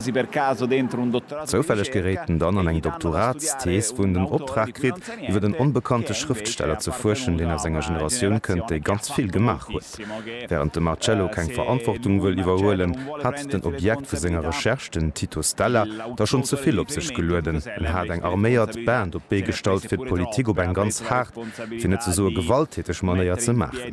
Zoufälleg geréit en dann an eng Doktoratsthees, wou en den Optrag kritt, iwwer en onbekannte Schrëftsteller ze fuerschen, deen aus enger Generatioun kënnt, déi ganz vill gemaach huet. Wärend de Marcello keng Verantwortung wëll iwwerhuelen, hat den Objekt vu senger Recherche, den Tito Stella, da schonn ze vill op sech gelueden. En hat eng arméiert Band op d'Bee gestallt, fir d'Politik op eng ganz haart, fir net ze soe gewalttäteg Manéier ze maachen.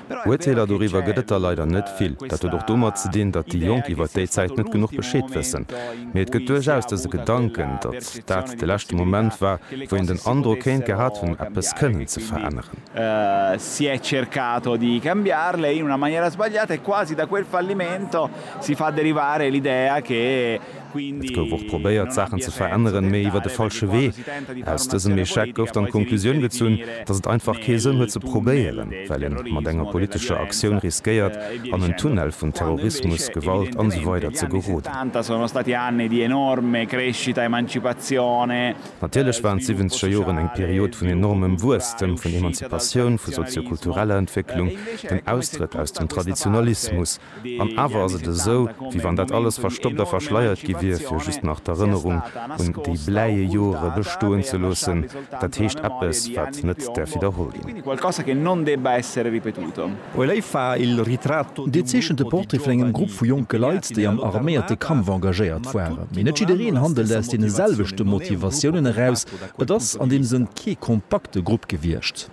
Uerteeler doriwwer gëtt et der leider net vill. Dat huet och domat ze dinn, datt déi Jonk iwwert déi Zäit net genuch Bescheed wëssen. Mee et gëtt duerchaus dëse Gedanken, datt dat de leschte Moment war, wou een den Androck kéint gehat hunn, eppes kënnen ze veränneren. Et gouf och probéiert, Saachen ze veränneren, mee iwwer de falsche Wee. Aus dësem Echec gouf dann d'Konklusioun gezunn, datt et einfach kee Sënn huet ze probéieren, well ee mat enger politescher Aktioun riskéiert, an en Tunnel vun Terrorismus, Gewalt an esou weider ze geroden. Natierlech waren d'Siwwenzeger Joren eng Period vun enormem Wuesstem, vun Emanzipatioun, vu sozio-kultureller Entwécklung, dem Austrëtt aus dem Traditionalismus, An awer ass et esou, wéi wann dat alles verstoppt a verschleiert gi wier, fir just nach d'Erënnerung un déi bläie Jore bestoen ze loossen, dat heescht eppes, wat net däerf widderholl ginn. Dir zeechent de Portrait vun engem Grupp vu jonke Leit, déi am arméierte Kampf engagéiert waren. Mee net jiddereen handelt aus deene selwechte Motivatiounen eraus. Et ass an deem Sënn kee kompakte Grupp gewiescht.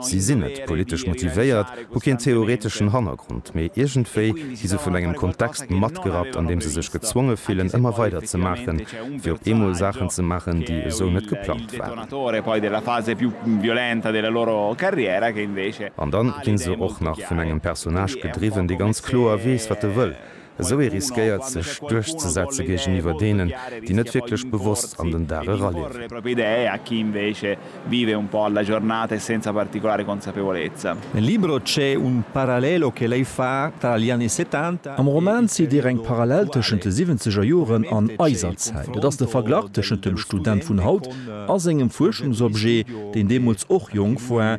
Si sinn net politesch motivéiert, hu keen theoreteschen Hannergrond, mee iergendwéi gi se vun engem Kontext matgerappt, an deem se sech gezwonge fillen, ëmmer weider ze maachen, fir op eemol Saachen ze maachen, déi esou net geplangt waren. An dann ginn se och nach vun engem Personnage gedriwwen, dee ganz kloer weess, wat e wëll, Esou ee riskéiert sech duerchzesetze géigeniwwer deenen, déi net wierklech bewosst an den Dag eraliewen. Nel libro c'è un parallelo che lei fa tra gli anni settanta e Am Roman zitt Dir eng Parallel tëschent de siwwenzeger Joren an eiser Zäit. Et ass de Verglach tëschent dem Student vun haut a sengem Fuerschungsobjet, deen deemools och jonk war,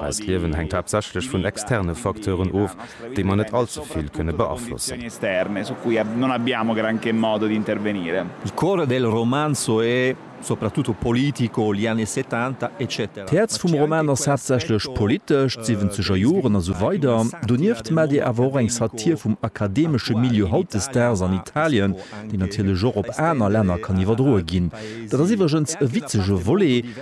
Eist Liewen hänkt haaptsächlech vun externe Facteuren of, déi mer net all ze vill kënne beaflossen. Il cuore del romanzo è soprattutto politico, gli anni settanta, eccetera. D'Häerz vum Roman ass haaptsächlech politesch, d'siwwenzeger Joren a sou weider. Donieft maacht ee awer och eng Satir vum akademesche Milieu hautdesdaags an Italien, déi natierlech och op aner Länner kann iwwerdroe ginn. Dat ass iwwregens e witzege Volet,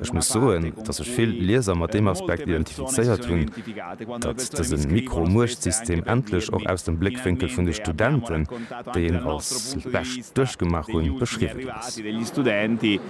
Ech muss soen, datt sech vill Lieser mat deem Aspekt identifizéiert hunn, datt dëse Mikro-Muechtsystem endlech och aus dem Bléckwénkel vun de Studenten, déi een als bescht duerchgemaach hunn, beschriwwen ass.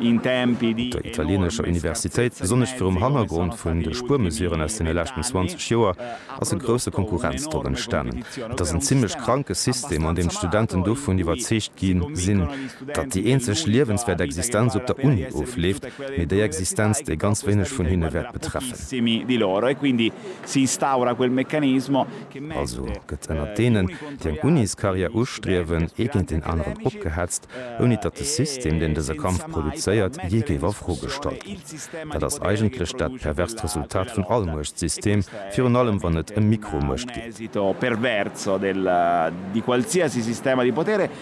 Der italieenescher Universitéit, besonnesch virum Hannergrond vun de Spuermesuren aus deene leschten 20 Joer, ass e grousse Konkurrenzdrock entstanen. Et ass en zimmlech kranke System, an deem d'Studenten dovun iwwerzeegt gi sinn, datt déi eenzeg liewenswäert Existenz op der Uni ofleeft, mee déi Existenz, déi ganz wéineg vun hinne wäert betreffen. Also gëtt ënnert deenen, déi eng Uniscarrière ustriewen, ee géint deen aneren opgehetzt, ouni datt de System, deen dëse Kampf produzéiert, jee géif a Fro gestallt ginn. Dat ass eigentlech dat perverst Resultat vun all Muechtsystem, virun allem wann et ëm Mikromuecht geet.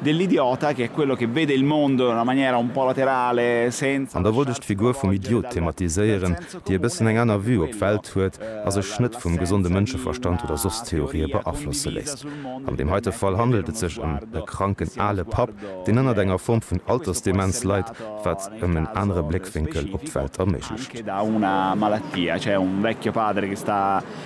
Dell'idiota, che è quello che vede il mondo in una maniera un po' laterale, senza. An da wollt ech d'Figur vum Idiot thematiséieren, déi e bëssen eng aner Vue op d'Welt huet a sech net vum gesonde Mënscheverstand oder soss Theorië beaflosse léisst. An deem heite Fall handelt et sech ëm e kranken ale Papp, deen ënnert enger Form vun Altersdemenz leit, wat ëm en anere Bléckwénkel op d'Welt erméiglecht.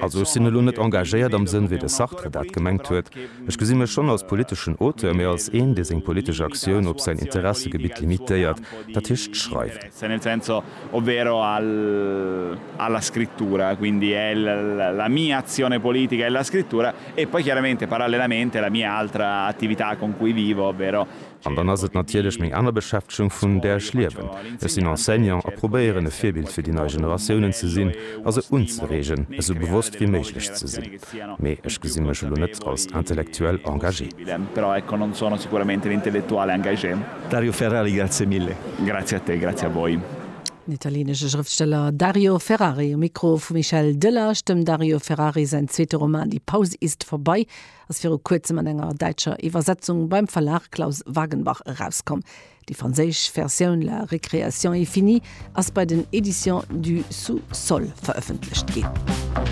Also ech sinn elo net engagéiert am Sënn, wéi de Sartre dat gemengt huet. Ech gesi mech schonn als politeschen Auteur, mee als een, dee seng politesch Aktioun op säin Interessegebitt limitéiert, dat heescht d'Schreiwen. An dann ass et natierlech meng aner Beschäftegung, vun där ech liewen. Ech sinn Enseignant a probéieren, e Virbild fir déi nei Generatiounen ze sinn a se unzereegen, esou bewosst wéi méiglech ze sinn. Mee ech gesi mech elo net als intellektuell engagé. Dario Ferrari, Grazie mille. Grazie a te, grazie a voi. Den italienesche Schrëftsteller Dario Ferrari um Mikro vum Michel Delage. Dem Dario Ferrari säin zweete Roman Die Pause ist vorbei ass viru kuerzem an enger däitscher Iwwersetzung beim Verlag Claus Wagenbach erauskomm. Déi franséisch Versioun La récréation est finie ass bei den Editions du sous-sol verëffentlecht ginn.